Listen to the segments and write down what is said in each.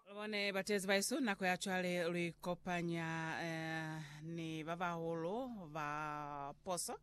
Lubone bateezi baesu, nako ya cwale luikopanya eh, ni babahulu ba poso,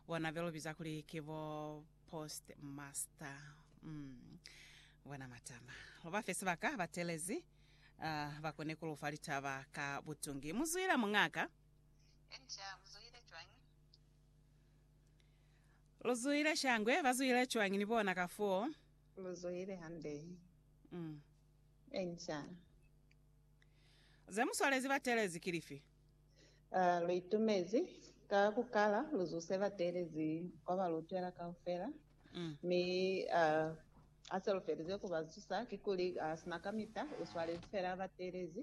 bona belubiza kuli ki bo post master. Mm. Bona matama. Lubafe sibaka batelezi ah, bakone kulufa litaba ka butungi. Muzwile mungaka. Enca, muzwile cwañi? Luzwile shangwe, bazwile cwañi ni bona ka foo? Lu zuhile hande. Insha'Allah. Ze mu swalezi ba teelezi ki lifi? Lu itumezi ka ku kala lu zuse ba teelezi kwa ba lu utwela kaufela, mi ha se lu felize ku ba zusa, kikuli sina kamita u swalezi fela ba teelezi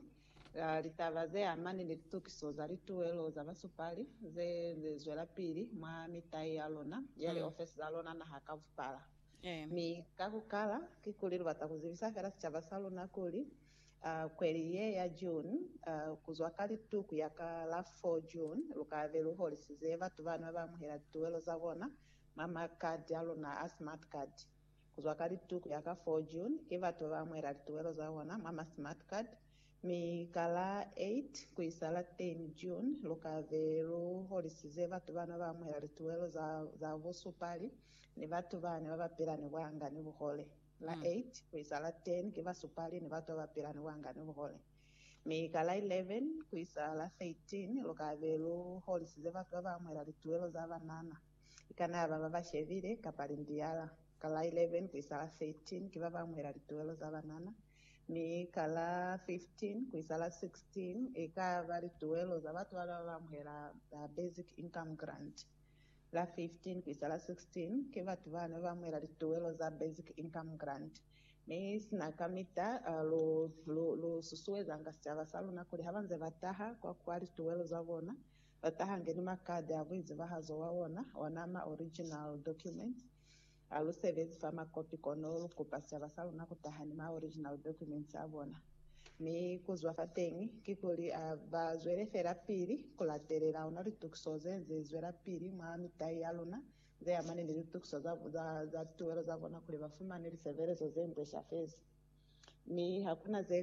ka litaba ze amani ni litukiso za lituwelo za basupali ze zwelapili mwa mitai ya luna ya liofesi za luna naha ka bupala. Mi ka ku kala, kikuli lu bata ku zibisa fela sicaba sa luna kuli, kweli ye ya June, ku zwa ka litu ku ya ka la 4 June, lu ka be lu holisize batu bani ba ba amuhela lituwelo za bona mwa ma card a luna a Smart Card. Ku zwa ka litu ku ya ka 4 June, ki batu ba ba amuhela lituwelo za bona mwa ma Smart Card Mi ka la 8 ku isa la 10 June, lu ka be lu holisize batu ba na ba amuhela lituwelo za, za busupali, ni batu bani ba ba pila ni buanga ni buhole. La 8 ku isa la 10 ki basupali ni batu ba ba pila ni buanga ni buhole. Mi ka la 11 ku isa la 13, lu ka be lu holisize batu ba ba amuhela lituwelo za banana, i kana ya ba ba ba shebile, kapa lindiyala. Ka la 11 ku isa la 13 ki ba ba amuhela lituwelo za banana. Mi ka la 15 ku isa la 16 i ka ba lituwelo za batu ba ba amuhela Basic Income Grant. La 15 ku isa la 16 ki batu ba ne ba amuhela lituwelo za Basic Income Grant. Mi sina kamita lu, lu, lu susuezanga sicaba sa luna kuli ha ba nze ba taha kwa kwa lituwelo za bona, ba tahange ni makadi a buizibahazo bwa ona, ona ma original documents. Ha lu sebezi fa makopi kono lu kupa sicaba sa luna ku taha ni ma original documents a bona. Mi ku zwa fateñi, kikuli a ba zwele fela pili ku latelela ona litukiso ze ze zwela pili mwa mitai ya luna, ze amani ni litukiso za, za, za tuwelo za bona kuli ba fumane lisebelezo ze nde shafezi. Mi ha ku na ze